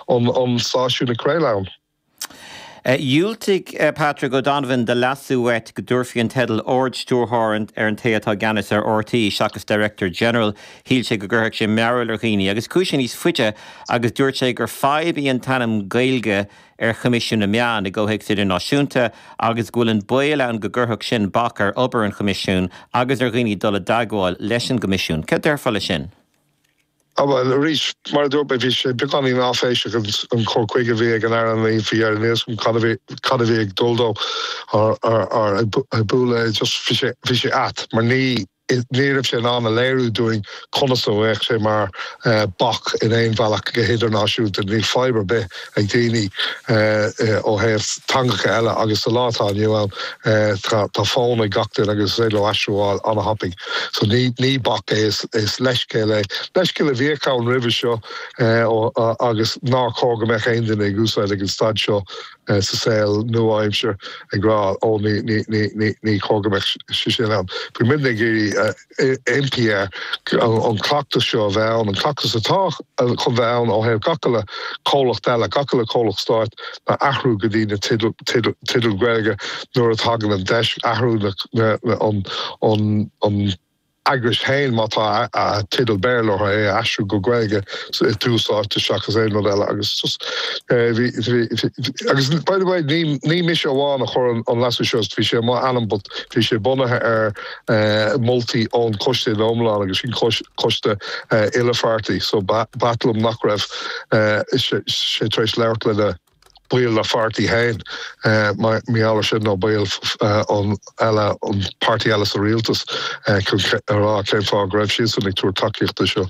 an stáisiún ag craoladh ann. Dhiúltaigh Patrick O'Donovan do leasú uait go dtabharfaí an teideal Ard-Stiúrthóir ar an té atá i gceannas ar RTÉ seachas Director General. Shíl sé go gcuirfeadh sé mearbhaill ar dhaoine agus chuaigh sé níos faide agus dúirt sé gur fadhb í an t-ainm Gaeilge ar Choimisiún na Meán i gcomhthéacs idirnáisiúnta agus go bhfuil an baol ann go gcuirfeadh sin bac ar obair an Choimisiúin agus ar dhaoine dul i dteagmháil leis an gCoimisiún. Céard déarfá leis sin? Á bhuel, arís, mar a dúirt mé, bhí sé beagáinín áiféiseach an cur chuige a bhí ag an Aire, ní, níl a fhios agam cad a bhí, cad a bhí ag dul dó ar, ag bualadh é, just, bhí sé, bhí sé ait mar ní, ní raibh sé in ann a léiriú dúinn conas a bheadh sé mar bac in aon bhealach go hidirnáisiúnta. Níl fadhb ar bith ag daoine ó thaobh teangacha eile agus sa lá atá inniu ann tá, tá fón ag gach duine agus is féidir leo aistriú a fháil ana-thapaidh. So ní ní bac é is is leithscéal é. Leithscéal a bhíodh ann roimhe seo ó agus nár chóir go mbeadh aon duine ag úsáid ag an staid seo sa saol nua-aimsir ag rá ó ní ní ní ní ní chóir go mbeadh sé sin ann. Bhí muidne ag iarraidh impí air an cleachtas seo a bheith ann, an cleachtas atá chun bheith ann ó thaobh gach uile comhlacht eile, gach uile comhlacht stáit a athrú go dtí na teidil Gaeilge nuair a thagann an deis, athrú an eagrais féin má tá teideal Béarla orthu, é a aistriú go Gaeilge i dtús áite seachas aon rud eile. Agus by the way, ní mise amháin a chuir an leasú seo, bhí sé i m'ainm but bhí sé bunaithe ar moltaí ón Coiste Iomlán agus an Coiste Uilepháirtí so b'ait liom nach raibh sé tar éis labhairt lena baill dá pháirtí féin, mar gheall air sin nó baill eile ón bpáirtí eile sa rialtas, chun a rá cén fáth go raibh siadsan ag tabhairt tacaíochta seo.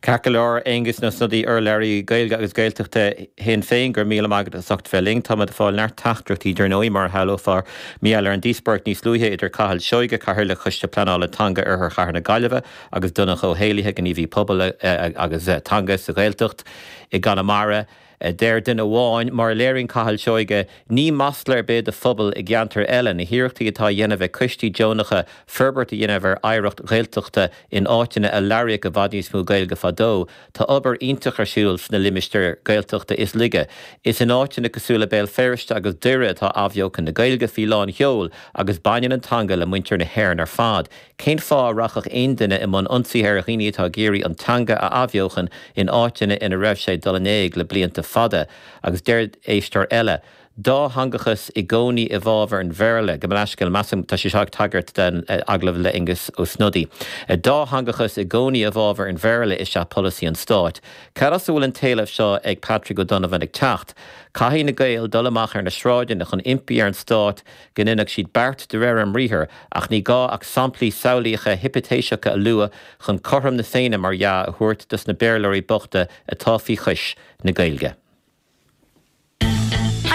Ceart go leor, Aengus Ó Snodaigh urlabhraí Gaeilge agus Gaeltachta Shinn Féin, go raibh míle maith agat as ucht bheith linn. Táimid ag fáil neart teachtaireachtaí, dar ndóigh, mar a shamhlófá, mar gheall ar an díospóireacht níos luaithe idir Cathal Seoige, Cathaoirleach Choiste Pleanála Teanga Oirthear Chathair na Gaillimhe agus Donncha Ó hÉallaithe, gníomhaí pobail agus teanga sa Ghaeltacht i gConamara. a deir duine amháin. Mar a léiríonn Cathal Seoige, ní masla ar bith do phobail i gceantair eile na hiarrachtaí atá á dhéanamh ag coistí deonacha forbairt a dhéanamh ar oidhreacht Ghaeltachta in áiteanna a labhraíodh i bhfad níos mó Gaeilge fadó. Tá obair iontach ar siúl sna limistéir Gaeltachta is laige. Is in áiteanna cosúil le Béal Feirste agus Doire atá athbheochan na Gaeilge faoi lán sheol agus baineann an teanga le muintir na hÉireann ar fad. Cén fáth a rachfadh aon duine i mbun ionsaithe ar dhaoine atá ag iarraidh an teanga a athbheochan in áiteanna ina raibh sé ag dul in éag le blianta fada? Agus deir éisteoir eile, Dátheangachas i gcónaí i bhfábhar an Bhéarla, gabh mo leithscéal, measaim tá sé seo ag tagairt den agallamh le Aengus Ó Snodaigh. Dátheangachas i gcónaí i bhfábhar an Bhéarla is ea polasaí an stáit. Cad as a bhfuil an t-éileamh seo ag Patrick O'Donovan ag teacht? Caithfidh na Gaeil dul amach ar na sráideanna chun impí ar an stát go ndéanfadh siad beart de réir a mbriathar, ach ní gá ach samplaí samhlaíocha hipitéiseacha a lua chun cothrom na Féinne, mar dhea, a thabhairt dos na Béarlóirí bochta atá faoi chois na Gaeilge.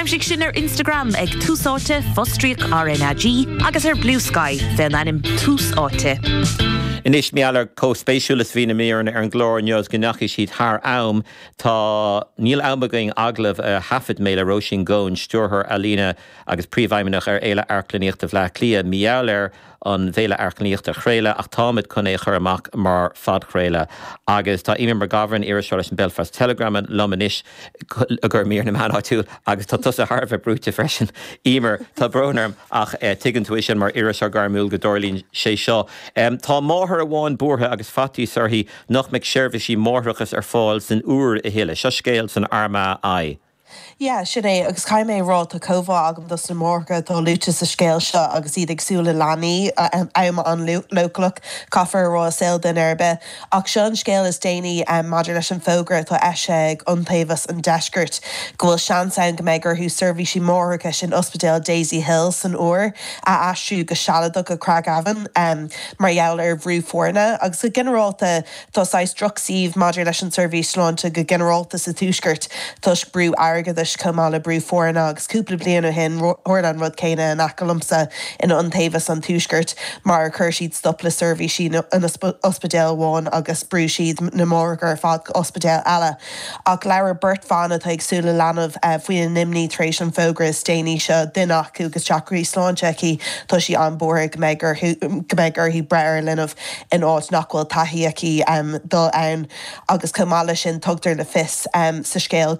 Aimsigh sinn ar Instagram ag Tús Áite, fostríoc RnaG, agus ar Bluesky, fé an ainm Tús Áite. Anois, mar gheall ar chomh spéisiúil is a bhí na míreanna ar an gclár inniu is go ndeachaigh siad thar am. Tá, níl am againn agallamh a thaifead mé le Róisín Goan, stiúrthóir ealaíne agus Príomhfheidhmeannach ar Fhéile Amharclannaíochta Bhleá Cliath, mar gheall ar an bhFéile Amharclannaíochta a chraoladh ach táimid chun é a chur amach mar phodchraoladh. Agus tá Eimear McGovern, iriseoir leis an Belfast Telegram, liom anois, i gcomhair mír na meán áitiúil, agus tá tusa thar a bheith brúite freisin, Eimear, tá brón orm, ach tuigeann tú é sin mar iriseoir gairmiúil go dtarlaíonn sé seo. Tá máthair amháin buartha agus faitíos uirthi nach mbeidh seirbhísí máithreachais ar fáil san Iúr a thuilleadh. Seo scéal san Armagh I. Yeah, sin é, agus caithfidh mé a rá, tá comhbhá agam dos na máithreacha atá luaite sa scéal seo agus iad ag súil le leanaí, am an-leochaileach, caithfear a rá, i saol duine ar bith. Ach seo an scéal is déanaí maidir leis an bhfógra atá eisithe ag Iontaobhas an Deiscirt go bhfuil seans ann go mbeidh orthu seirbhísí máithreachais in Ospidéal Daisy Hill san Iúr a aistriú go sealadach go Craigavon mar gheall ar bhrú foirne agus go ginearálta Tá saghas drochshuíomh maidir leis an tseirbhís sláinte go ginearálta sa tuaisceart toisc brú airgeadais chomh maith le brú foirne agus cúpla bliain ó shin tharla an rud céanna in aice liomsa in Iontaobhas an Tuaiscirt mar ar chuir siad stop le seirbhísí in ospidéal amháin agus brúigh siad na máithreacha ar fad go ospidéal eile. Ach labhair beirt bhan atá ag súil le leanbh faoina n-imní tar éis an fógra is déanaí seo, duine acu agus deacrachtaí sláinte aici, tá sí an-bhuartha go mbeidh go mbeidh uirthi breith ar leanbh in áit nach bhfuil taithí aici dul ann agus chomh maith leis sin tugtar le fios sa scéal go